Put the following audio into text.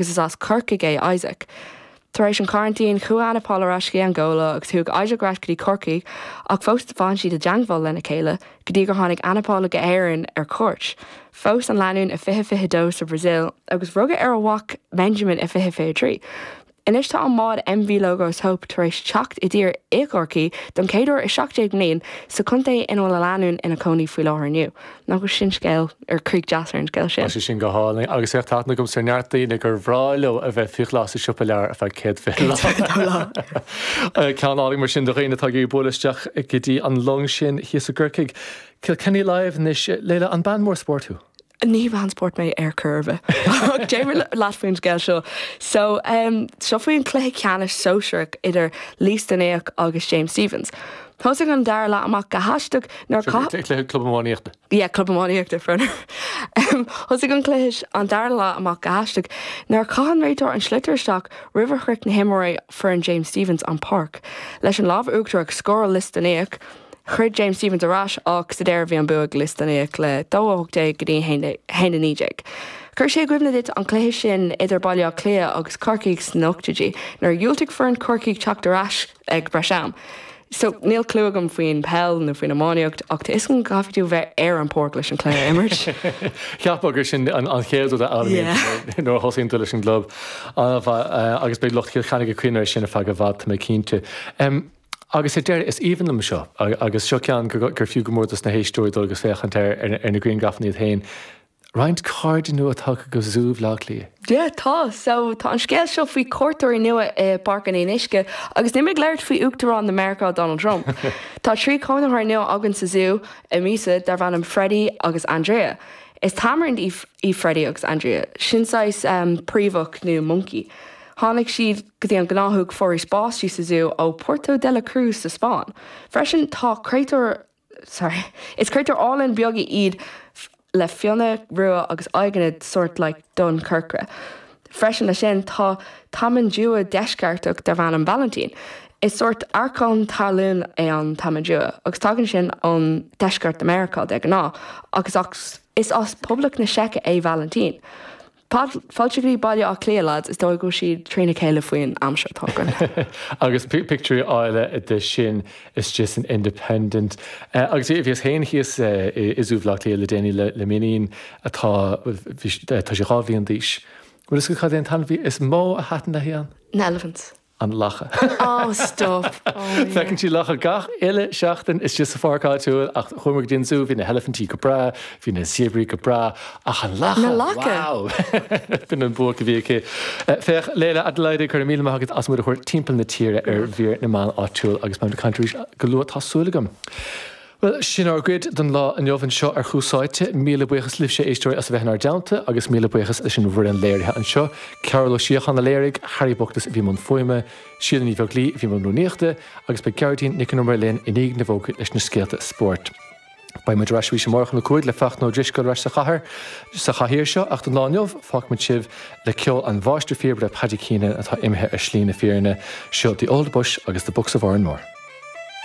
agus is as Corcaigh é Isaac. Tar éis an choraintín, chuaigh Ana Paula ar ais go dtí Angóla agus chuaigh Isaac ar ais go dtí Corcaigh, ach fós d'fan siad i dteangmháil lena chéile go dtí gur tháinig Ana Paula go hÉirinn ar cuairt. Phós an lánúin i 2022 sa Bhrasil agus rugadh ar a mhac Benjamin i 2023. Anois tá an bád MV Logos Hope tar éis teacht i dtír i gCorcaigh don chéad uair i 17 mbliain, sa chontae ina bhfuil an lánúin ina cónaí faoi láthair inniu. Nach bhfuil sin scéal, ar críoch deas ar an scéal sin? Tá sé sin go hálainn agus bheadh aithne agamsa ar neart daoine gur bhreá leo a bheith faoi ghlas sa siopa leabhar ar feadh céad fiche lá. Céad fiche lá. Ceann álainn mar sin do dhaoine atá ag bualadh isteach go dtí an long sin thíos i gCorcaigh. Kilkenny Live anois. Leila, an bean mór spóirt thú? Ní bhean spóirt mé ar chor ar bith. Ach déarfaidh mé leat faoin scéal seo. So, seo faoi an chluiche ceannais sóisearach idir Lios Dúnaígh agus James Stephens. Thosaigh an dara leath amach go haisteach nuair a chaith. Seo cluiche Club Iománaíochta. Yeah, Club Iománaíochta, fair enough. Thosaigh an cluiche an dara leath amach go haisteach nuair a chaith an réiteoir an sliotar isteach roimh a shroich na himreoirí foireann James Stephens an páirc. Leis an lámh uachtarach ag scóráil Lios Dúnaígh, throid James Stephens ar ais ach sa deireadh bhí an bua ag Lios Dúnaígh le 2-18 in aghaidh 1-19. Chuir sé i gcuimhne duit an cluiche sin idir Baile Átha Cliath agus Corcaigh sna n-ochtóidí nuair a dhiúltaigh foireann Chorcaí teacht ar ais ag breis am. So, níl clú agam faoin peil nó faoin iománaíocht, ach tá a fhios agam go gcaithfidh tú bheith ar an bpáirc leis an cluiche a imirt. Cheapfá gur sin an chéad rud a fhoghlaimíonn tú nuair a thosaíonn tú leis an gclub. Ana mhaith, agus beidh lucht Chill Chainnigh ag cuimhneamh air sin ar feadh i bhfad, tá mé cinnte. Agus ar deireadh, is aoibhinn liom seo, agus seo ceann gur fiú go mór dos na héisteoirí dul agus féachaint ar na griangrafanna iad féin. Roinnt cairde nua tagtha go Zú Bhaile Átha Cliath. Yeah tá so tá an scéal seo faoi cuairteoirí nua i bPáirc an Fhionnuisce agus níl mé ag labhairt faoi Uachtarán na Meiriceá Donald Trump. Tá trí cónaitheoir nua againn sa zú an mhí seo darb ainm Freddie agus Andrea. Is tamairin iad Freddie agus Andrea, sin saghas príomhach nó moncaí. Tháinig siad go dtí an gnáthóg Foraois Báistí sa zú ó Puerto de la Cruz sa Spáinn. Freisin tá créatúr. sorry, is créatúir álainn beaga iad le fionnadh rua agus aghaidheanna sort like donn corcra. Freisin leis sin tá tamanduá deisceartach darb ainm Valentin. Is sort arcán talún é an tamanduá agus tagann sin ón deisceart na Meiriceá de ghnáth, agus is as Poblacht na Seice é Valentin. Fáilte go Baile Átha Cliath, leaids, is dóigh go bhfuil siad trína chéile faoin aimsir atá againn. Agus pictiúirí áille de sin istigh san Independent. Agus bhíos féin thíos i Zú Bhaile Átha Cliath le déanaí le m'iníon atá, bhuel, tá sí dhá bhliain d'aois. Bhfuil a fhios agat cad é an t-ainmhí is mó a thaitin léi ann? An eilifint. an lacha. Oh, stop! Oh, my God. Feiceann sí lacha gach uile seachtain istigh sa pháirc áitiúil ach chuamar go dtí an zú, bhí na heilifintí go breá, bhí na zéabraí go breá, ach an lacha! Na lacha! Wow! B'in an buaic a bhí aici. Eh, féach, Leila Adelaide, go raibh míle maith agat as muid a thabhairt timpeall na tíre ar mhír na meán áitiúil agus beidh muid ag caint arís go luath, tá súil agam. Bhuel, sin ár gcuid don lá inniu anseo ar Thús Áite. Míle buíochas libhse, a éisteoirí, as a bheith inár dteannta agus míle buíochas leis an bhfoireann léirithe anseo, Cearbhall Ó Síocháin a léirigh, Harry Bookless a bhí i mbun fuaime, Síle Ní Bheaglaoich a bhí i mbun rúnaíochta, agus beidh Gearóidín Nic an Iomaire linn i ndiaidh na bhfógraí leis na scéalta spóirt. Beidh muid ar ais arís amárach um a 5 le Fachtna Ó Drisceoil ar ais sa chathair, sa chathaoir seo, ach don lá inniu, fágfaimid sibh le ceol an mháistirphíobaire Paddy Keenan atá imithe ar shlí na fírinne. Seo The Old Bush agus The Bucks of Oranmore.